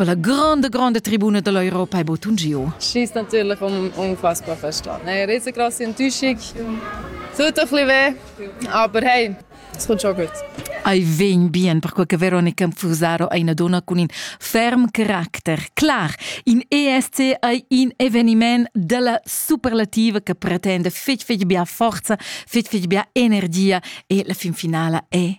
per la grande grande tribuna dell'Europa è bottun giu. Schieß natürlich um unfassbar verstanden. Hey, riesengroß Enttäuschung. Tut ein bisschen weh, aber hey, es kommt schon gut. Ai vegn bien perquei che Veronica Fusaro è una donna con in ferm caracter. Clar, in ESC è un eveniment della superlativa che pretende fetg fetg bia forza, fetg fetg bia energia e la fin finale è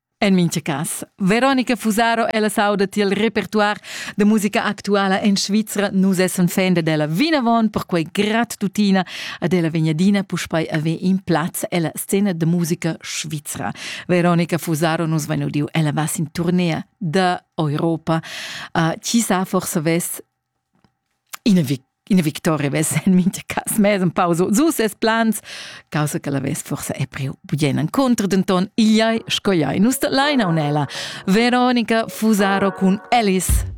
En mintga cas, Veronica Fusaro, ella sauda tiel repertoire de musica actuala en Svizra. Nus essen fan de della vinavon, perquei grat tutina ad ella vegnadina puspei ave in plaz ella scena de musica Svizra. Veronica Fusaro nus vegnodiu ella vas in tournea de Europa. Uh, chi sa forse ves Ina, vic ina victoria vess en mintga cas mez en pausa su ses plans, causa che la vess forsa è priu bugen encontrer, denton igl ei sco ei nus dat laina unella. Veronica Fusaro cun Alice.